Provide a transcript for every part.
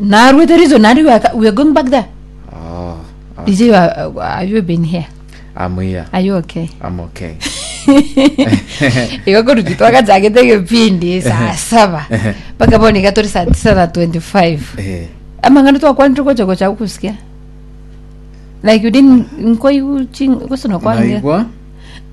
Narue the reason and we are, we are going back there. Oh, oh, Is you are, are you been here? I'm here. Are you okay? I'm okay. Igo koruti twagachagete gepindi saa saba mpaka bono iga turi saa tisa na 25 Eh, amang'ana twakwanire gocha gocha gusikia like you didn't nkoigu ching gosona kwanire naigwa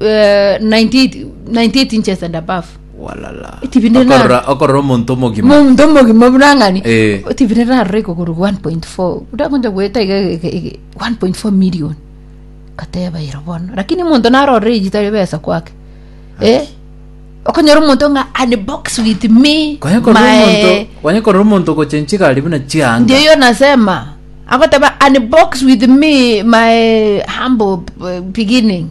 eh, 98 98 inches and above Walala. TV nene- Okorora okorora omonto omogima. omonto omogima burang'ani Eh. tv nerarora ekogoro 1.4 ndakoncha goeta iga ege- ege- 1.4 million kateba ero bono lakini omonto narorire eyitari ebesa kwake eh okonyora omonto ng'a and box with me Kwanye korora my omonto kwanye korora omonto gocha enchigari buna ndio chianga hiyo nasema agoteba and box with me my humble b- beginning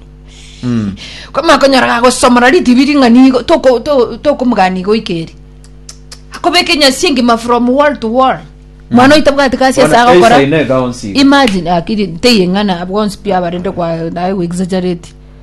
Mm. koma konyora gagosomora ritibi ring'ani igo toko- to- tokomogani igo ikeri akobeka enyasi engima from wall to wall mwana oita bwati kasi ase Bona, agokora eisaine eka onsi. imagine akiri nteyeng'ana abwonsi pia abarende kwa naye exaggerate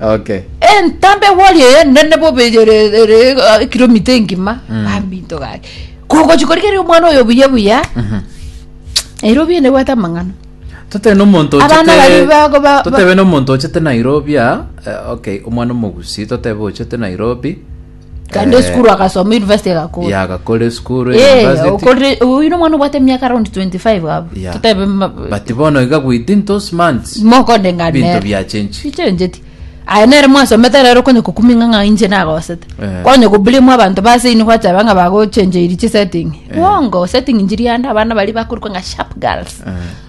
Okay. entambe wari eye nene bobeyereere kilomita engima Mm. bambinto gake kogochi korigeria omwana oyo buya buya Mhm. ero biene bwate amang'ana Totebe n'omonto ochete- Abana bari bago ba- totebe n'omonto ochete Nairobi aa, eh, okay, omwana omogusi totebe ochete Nairobi kaende Eh, esukuru agasoma university egakora yagakora esukuru Eh, university okorire- oyu ni omwana obwate emiaka around 25 gabo Yeah. totebe ma- but bono iga within those months mokonde ngane binto nere. biachenji chichenjeti aya nere mwasomete rero konye kokuminga ng'a inche nagosete Eh. konye kobulimu abanto base ini gwateba ng'a bagochenjeiri chisetting bongo setting njiri ande abana bari bakorikwa ng'a sharp girls Eh.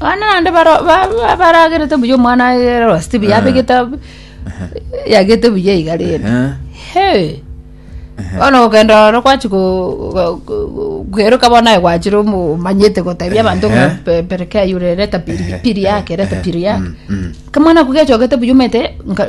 Abana bande baro- ba- ba- baragerete buya omwana agere rosti buya abegete ab- yagete buya iga rende Ehe. He. bono gokenda oro kwachi kweroka bono aye gwachire omo- omanyete gotebia abanto ng'a Ehe. pe- perekea yure reta piri- piri yake reta piri yake Mm, mm. kamwana ako gechogete buya omanyete nka-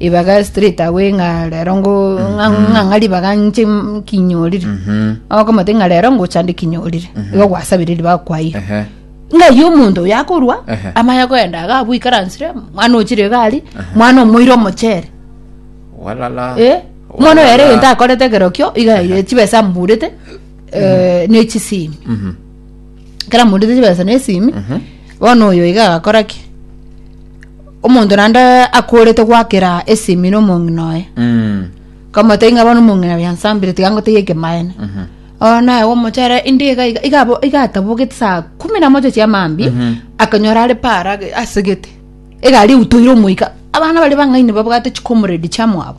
Ribaga straight away ng'a rero ngo ng'a ng'a ng'a ribaga nche m- kinyorire okomate ng'a rero ngochande kinyorire igo gwasabire ribaga kwaiyire Ehe. ng'ai omonto oyo akorwa Ehe. amanye koenda iga abwo ikaransire mwana ochire iga ari mwana omoire omochere Walala. Eh, mwana oyo ere Walala. egento akorete ekerokio iga yaire chibesa amburete eh, ne chisimi Mhm. kera amburete chibesa ne esimi bono oyo iga agakora ki Omonto naende akoorete goakera esimi nomong'ina oye, Mm. kamotebia ng'a bono omong'ina oye ansambire tiga ngotebie ekemaene. Oye naye gomochere inde iga iga iga abo- iga atabogete saa kumi na moja chia maambia akanyora are paara age- asegete egari eutoire omoika abana baria bang'aini babwate chikomoredi chiamwabo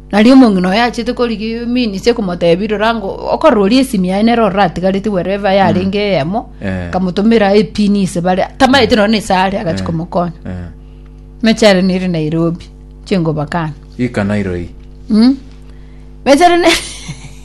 Nario omong'ina oye achete korigia eminisi ekomoteebia, Rora ngo okorooria esimi yaye nere oratigareti wherever yarenge eyemo, Eh. akamotomera epini ise bare, tamaete nonye na ise are agachi komokonya. Eh. Mechi are nere Nairobi, chingobakana. Ika nairoi. Mm. Mechi are ne-